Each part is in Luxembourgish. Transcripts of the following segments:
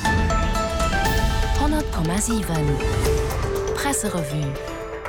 100,7 Presserevue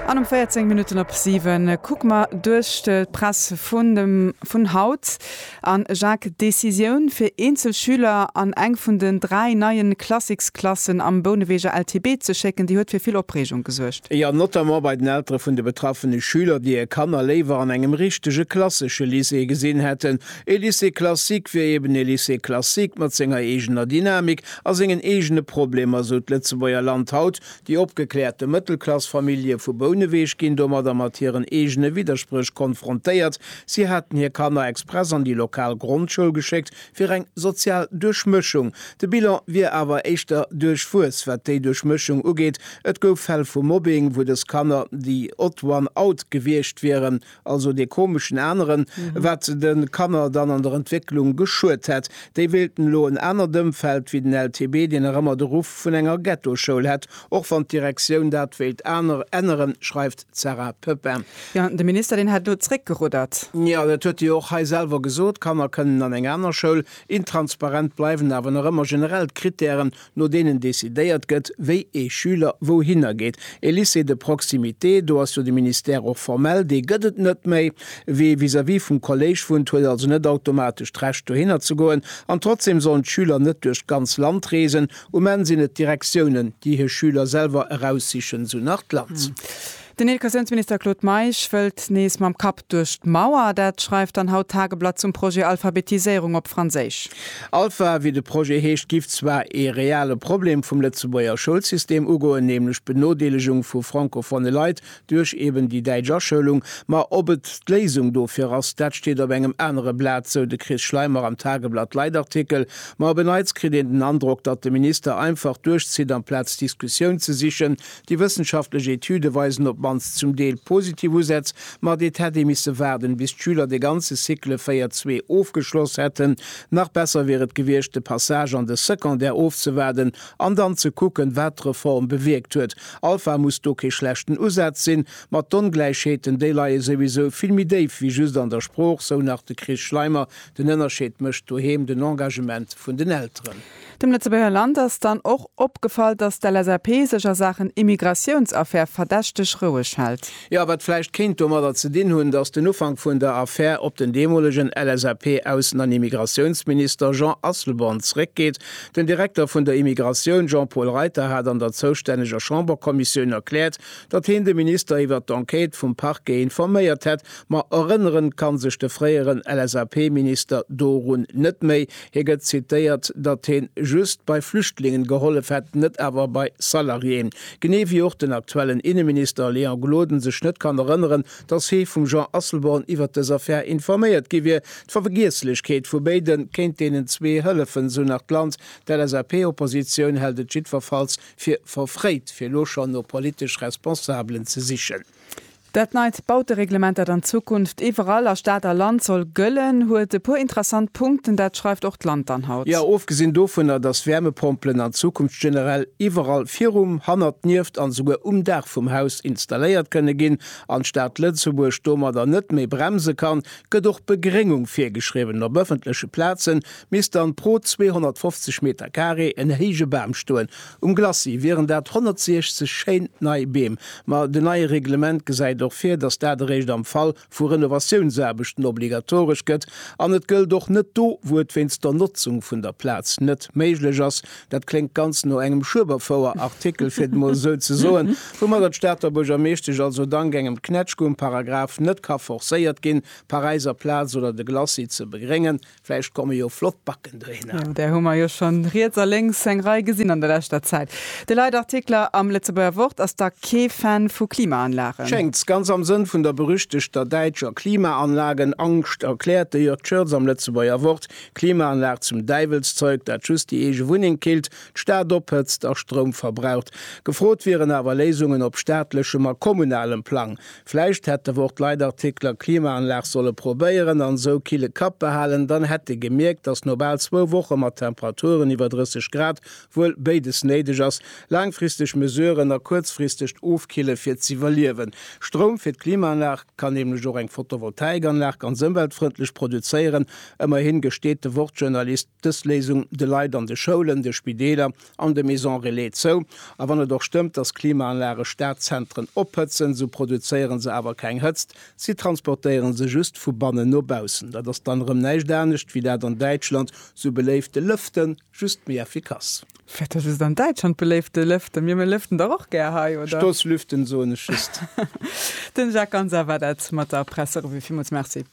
An um 14 Minutten op 7 kucke mer duerch d'Press vun dem vun haut. A Jacques, Decisioun fir eenzel Schüler an eng vun den dräi neie Classics-Klassen am Bouneweger LTB ze schécken, déi huet fir vill Opreegung gesuergt. Jo, notamment bei den Eltere vun de betraffene Schüler, déi hir Kanner léiwer an engem richtege klassesche Lycée gesinn hätten, E Lycée classique wier eben e Lycée classique mat senger eegener Dynamik a sengen eegene Problemer, esou d'Lëtzebuerger Land haut. Déi opgekläerte Mëttelklass-Famillje vu Bouneweg ginn domadder mat hiren eegene Widderspréch konfrontéiert. Si haten hir Kanner express an déi lokal Grondschoul geschéckt, fir eng sozial Duerchmëschung. De Bilan wier awer éischter duerchwuess, wat déi Duerchmëschung ugeet. Et gouf Fäll vu Mobbing, wou dës Kanner déi odd one out gewiescht wieren. also dee komeschen aneren, wat den Kanner dann an der Entwécklung geschuet hätt. Déi wéilten elo en anert Ëmfeld wéi den LTB, deen nach ëmmer de Ruff vun enger Ghettoschoul hätt, och wann d'Direktioun dat wéilt aner änneren, schreift d'Sarah Pepin. Jo, de Minister, deen hätt elo zréckgeruddert. Jo, dat huet e jo och hei selwer gesot, Kanner kënnen an eng aner Schoul. Intransparent bleiwen awer nach ëmmer generell d'Krittären, no deenen decidéiert gëtt, wéi ee Schüler wouhinner geet. E Lycée de proximité, do ass jo de Ministère och formell, dee gëtt et net méi. Wie vis-à-vis vum Kolléisch wunnt, huet also net automatesch d'Recht, dohinner ze goen. An trotzdeem sollen d'Schüler net duerch d'ganz Land reesen. Um Enn sinn et d'Direktiounen, déi hir Schüler selwer eraussichen, esou nach d'Lanz. Den Educatiounsminister Claude Meisch wëllt nees mam Kapp duerch d'Mauer. Dat schreift dann haut d'Tageblatt zum Projet Alphabetiséierung op Franséisch. Alpha, wéi de Projet heescht, giff zwar ee reale Problem vum Lëtzebuerger Schoulsystem ugoen, nämlech d'Benodeelegung vu francophone Leit duerch eben déi däitsch Aschoulung. Ma ob et d'Léisung dofir ass, dat steet op engem anere Blat, sou de Chris Schleimer am Tageblatt-Leitartikel. Ma op en Neits kritt een den Androck, datt de Minister einfach duerchzitt amplaz Diskussioun ze sichen. Déi wëssenschaftlech Etüde weisen op d'mannst zum Deel positiv Usätz, mat et hätt ee misse waarden, bis d'Schüler de ganze Cycle 4 zwee ofgeschloss hätten. Nach besser wier et gewiescht, de Passage an de Secondaire ofzewaarden an dann ze kucken, wat d'Reform bewierkt huet. Alpha muss do kee schlechten Usaz sinn, ma d'Ongläichheeten, déi leie souwisou vill méi déif wéi just an der Sprooch, sou nach de Chris Schleimer. Den Ënnerscheed mécht doheem den Engagement vun den Elteren. Dem Lëtzebuerger Land ass dann och opgefall, datt d'LSAP sech a Saachen Immigratiounsaffär verdächteg roueg hält. Jo, wat vläicht kéint domadder ze dinn hunn, datt den Ufank vun der Affär op den deemolegen LSAP-Aussen an Immigratiounsminister Jean Asselborn zréckgeet. Den Direkter vun der Immigratioun Jean-Paul Reiter hat an der zoustänneger Chamberkommissioun erkläert, datt heen de Minister iwwert d'Enquête vum Parquet informéiert hätt. Ma erënneren ka sech de fréieren LSAP-Minister dorun net méi. Hie gëtt zitéiert, datt heen just bei Flüchtlingen gehollef hätt, net awer bei Salariéen. Genee wéi och den aktuellen Inneminister Léon Gloden sech net kann erënneren, datt hee vum Jean Asselborn iwwert dës Affär informéiert gi wier. D'Verwgieslechkeet vu béide kéint deenen zwee hëllefen, sou nach d'Land. D'LSAP-Oppositioun hält et jiddwerfalls fir verfréit, fir elo schonn no politesch Responsabelen ze sichen. Dat neit Bautereglement, dat an Zukunft iwwerall a Stad a Land soll gëllen, huet e puer interessant Punkten. Dat schreift och d'Land dann haut. Jo, ofgesinn dovunner, datt Wäermepompelen an Zukunft generell iwwerall virum, hannert, nieft an esouguer um Daach vum Haus installéiert kënne ginn an d'Stad Lëtzebuerg domadder net méi bremse kann, gëtt och Begréngung virgeschriwwen. Op ëffentleche Plaze misst dann pro 250 Meter carré en héije Bam stoen. Um Glacis wieren dat 160 schéin nei Beem. Ma den neie Reglement gesäit och vir, datt dat eréischt am Fall vu Renovatiounsaarbechten obligatoresch gëtt. An et gëllt och net do, wou et wéinst der Notzung vun der Plaz net méiglech ass. Dat kléngt ganz no engem Schueberfouer-Artikel, fir et emol esou ze soen, woumatter d'Stater Buergermeeschtesch also dank engem Knätschke um Paragraph net ka forcéiert ginn, d'Paräiser Plaz oder de Glacis ze begréngen. Vläicht komme jo flott Backen dohinner. Jo, där hu mer jo schonn riets a lénks eng Rei gesinn an der leschter Zäit. De Leitartikler am Lëtzebuerger Wort ass da kee Fan vu Klimaanlagen. Schéngt, ganz am Sënn vun der berüchtegter däitscher Klimaanlagen-Angscht erkläert de Jörg Schürtz am Lëtzebuerger Wort, Klimaanlag zum Däiwelszeug, dat just déi eege Wunneng killt, d'Stad ophëtzt a Stroum verbraucht. Gefrot wieren awer Léisungen op staatlechem a kommunalem Plang. Vläicht hätt de Wort Leitartikler Klimaanlag solle probéieren an esou kille Kapp behalen, dann hätt de gemierkt, datt no bal zwou Woche mat Temperaturen iwwer 30 Grad wuel béides néideg ass, laangfristeg Mesuren a kuerzfristegt Ofkille fir z'iwwerliewen. Stroum fir d'Klimaanlag kann nämlech och eng Photovoltaikanlag ganz ëmweltfrëndlech produzéieren. Ëmmerhin gesteet de Wort-Journalist dës Léisung de Leit an de Schoulen, de Spideeler, an de Maison Relais zou, a wann et och stëmmt, dass Klimaanlage Stadzentren ophëtzen, sou produzéiere se awer keng Hëtzt, si transportéiere se just vu bannen no baussen. Dat ass dann erëm näischt anescht wéi dat an Däitschland sou beléifte Lëften, just méi effikass. Firwat ass et an Däitschland beléifte Lëften? Mir mir lëften dach och gär hei, oder? Stoßlüften soen ech just. Den Jacques Ganser war dat mat der Presserevue. Villmools Merci.